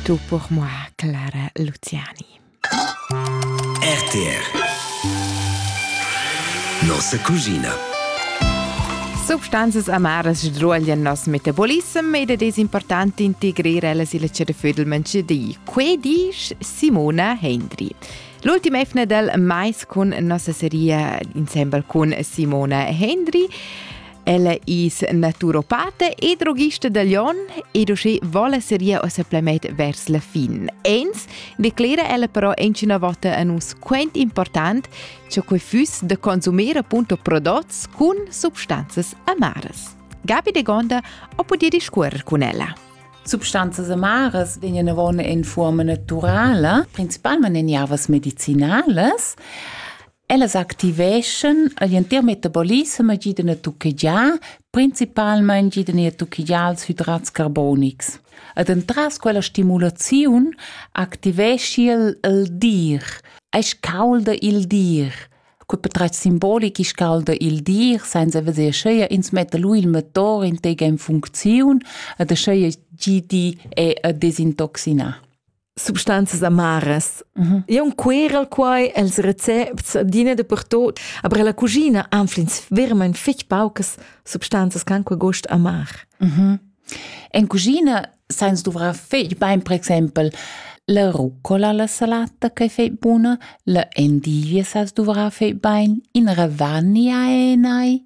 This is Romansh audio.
Tu pour moi, Clara Luciani. RTR Nossa cugina Substanzas amaras sdruoglian nos metabolissem ed ed es important integrir ellas illa cerefüdelmentscha di. Que disch Simona Hendry. L'ultima efna del Mais cun nossa seria insembel cun Simona Hendry Ella is naturopata e drogista da Lyon ed uschè vola seria o supplement vers la fin. Ins declera ella però inchina vota a nus quant important che quei füss de consumir appunto prodots cun substanzas amaras. Gabi de Gonda o podia discuorer con ella. Substanzas amaras vegnan avon in forma naturala, principalmente in ervas medicinales. Ellas activeschan igl entir metabolissem e gidan a tuchegiar, principalmein gidan er tuchegiar ils hidrats carbonics. Ed entras quella stimulaziun activeschi el il dir. Ei scalda il dir. Cul patratg simbolic scalda il dir senza veser scheia ins metta lu il motor in tega in funcziun ed scheia gidi è a desintoxinar. substanzas amaras. Mm -hmm. E un querel quai els recepts adina de pertot, aber la cucina anflins vermain fich paucas substanzas can qua gost amar. Mm -hmm. En cucina sainz duvrar fich bain per exempel la rucola la salata che fai buna, la endivia sa duvrar fai bain, in ravagna e nai,